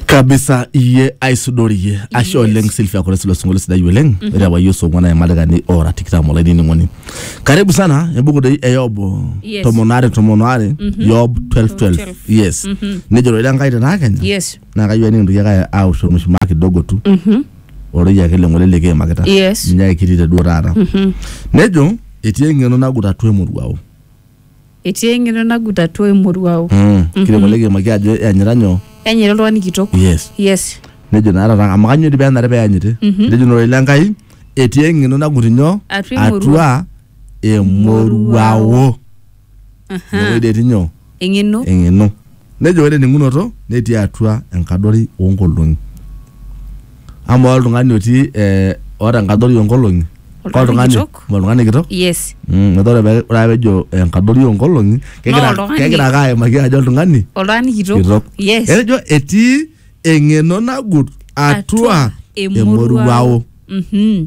kabisa iye aisudori iye ashe oleng silvia kore silo singolio sidai oleng ore apa iye osong'wana emalikani ora tikitam olainining'oni karibu sana embuku dei e yob Yes. tomon are tomon are yob 1212 yes nejo ore enkai tenaa kenya yes naa kayieu enikintoki ake aosh ormushumaa kidogo tu orei ake leng'ole likiimakita Yes. ninye ake kitii te duo taata nejo etii eng'eno nagut atua emoruao etii eng'eno nagut atua emoruao Mm. Kidim oleng aimaki ajo eanyita nyoo. enyita oltung'ani kitok Yes. yes Nejo naa taata amu kanyoo dii penare peanyiti. Nejo naa ororei l'Enkai etii eng'eno nagut nyoo. Atua emoruao. Atua emoruao. Emoruao. Aha. Inewueji dee etii nyoo. eng'eno Eng'eno. Nejo ore ening'unoto netii atua enkadori oo nkolong'i. Amaa oltung'ani otii eh, oota enkadori oo nkolong'i Oltung'ani kitok. ma oltung'ani kitok yes Mm, metaa ore pee- ore ake pejo enkadori oo nkolong'i kegira oltung'ani- kegira ake aimaki ajo oltung'ani oltung'ani kitok kitok. yes Etejo etii eng'eno nagut atua emoruao. Mhm.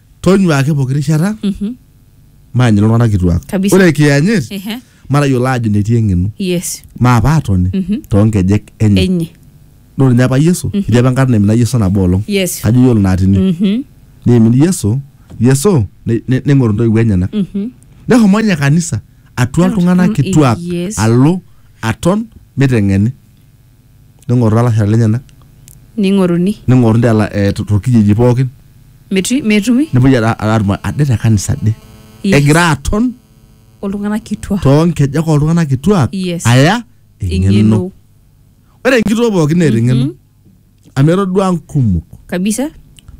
tonyua ake pooki rishata Mhm. maanyita iltung'anak kituak Kabisa. ore kiyanyit Ehe. matayiolo aajo netii eng'eno yes maa paatoni Mhm. toonkejek enye enye naa ore ninye apa yesu etii apa enkata naimina yesu enabo olong yes kajo iyiolo naatini Mhm. neimin yesu yesu ne- ne- neng'oru intoiwuo enyenak Mhm. neshomo ninye kanisa atua iltung'anak kituak Yes. alo aton miteng'eni ning'oru lalashera lenyenak ning'oruni ning'oru ndela eh, to- torkijiji pookin metu- metumi nepuoi ara- ara- atum ade te kanisa ade Yes. egira aton oltung'anak kituak toonkejek oltung'anak kituak Yes. aya eng'eno eng'eno ore enkitoo pookin neeta eng'eno amu etodua nkumok kabisa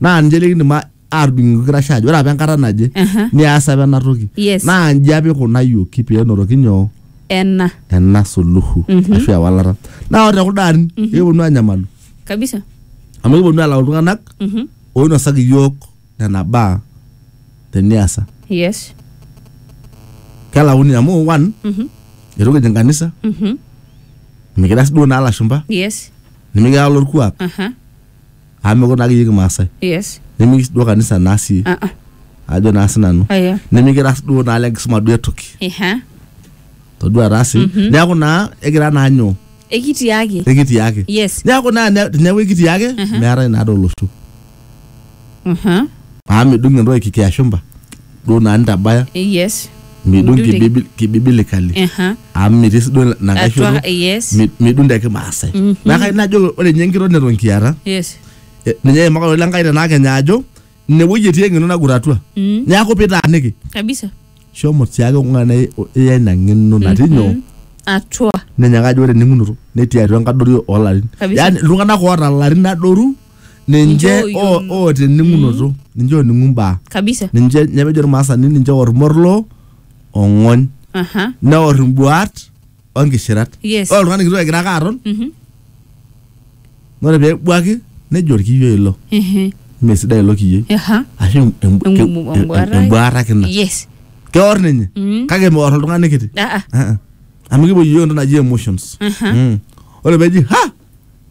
naa ninche likindim a- aatudung'oki irkirashe ajo ore apa enkata naje Aha. nias apa ena toki Yes. naa nji apa ikunayioki pee enotoki nyoo ena ena suluhu ashu ewalata naa ore tekulo arin ekiponu anyamalu kabisa amu ekiponu alau iltung'anak Mhm. oinosaki iyiook nena baa teniasa yes kelauni amu one Mhm. eitu kijing kanisa Mhm. mikira sii duo naa lashumpa yes nimikira lorkuak aha amu mekure naake iyie kimaasai yes nimikis duo kanisa naa sii ah ah ajo naa sinanu aya nimikira duo naa lenkisuma duo etoki eha todua taa sii neeku naa egira naa nyoo ekitiaki ekitii ake yes neeku naa ne- teneeku ekitii ake meetae naa doo olosho aha amu midung entoki kikiashumba duo naa nitabaya Eh, yes midung Midung te- kibibi- kibibilikali Aha. amu mitii si duo ina nkae shoto atua yes mi- midung te kimaasai naa kai najo ore ninye enkitok neton kiata yes eh, ninye eimakalo le nkai tenaa kenya ajo ine wueji etii eng'eno nagut atua Mm. neeku pitaaniki kabisa shomo tiake ong'ana iya ina ng'eno natii nyoo atua ninye kajo ore ening'unoto netii atua enkadori olarin Kabisa. yani iltung'anak oota ilarin adoru ninche Ninche o- ooyiolo. oota ening'unoto ninche oning'u mbaa kabisa ninche ninye pejo irmaasani ninche oor morlo ong'ony aha neor imbuaat onkishirat Yes. ore oltung'ani kitok egira ake aton Mhm. ore peebuaki nejo orkiyo ilo Ehe. mee sidai ilo kiyioi aha ashu em- em- Em- em- embuaata. embuaata ake ina yes keor ninye Mm. kake meor oltung'ani kiti Ah, ah. Ah, ah. amu kipuo yiok entoki naji emotions Aha. Mm. ore peji ha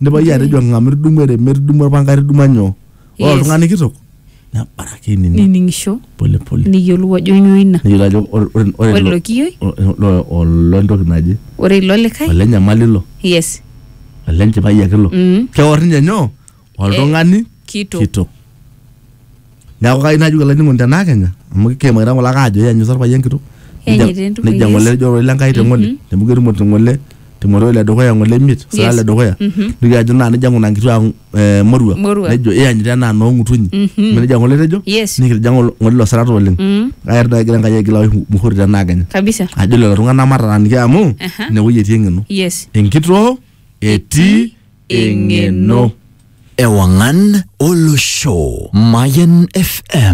Nipa iyie atejo ng'amu itudumua erem, itudumua orpanga, itudumua nyoo. Ore Yes. oltung'ani kitok nebaraki ainining nining'isho pole pole. niyiolou ajo nyoo ina Neyiolo ajo ore ore ore ore ilo ilo kiyioi ilo olo entoki naje ore ilo likae ole nyamali ilo yes ole nchipai ake ilo. Mm. Keor ninye nyoo? oltung'ani kitok. kitok neeku kai najoki olainining'oni tenaa kenya amu keimakita ng'ole ake ajo ianyusa orpayian kitok Ianyita Nejia- entumo nejia ng'ole Yesu. ejo ororei lenkai te ng'ole amu ketumoti ng'ole timoteo le dukuya ng'ole imiet sira Yes. le dukuya nitoki ajo naa nejia ng'una nkituak eh, morua Morua. nejo ianyita enaa noong'utunyi amu nejia ng'ole etejo Yes. nikitija ng'ole ng'ole ilo sirata oleng Mm. aerda egira enkai aigila oshi muhuri tenaa kenya kabisa ajo lelo tung'anak mataaniki amu Aha. inewueji etii eng'eno yes enkitoo etii eng'eno. Ewangan Olosho. Mayan FM.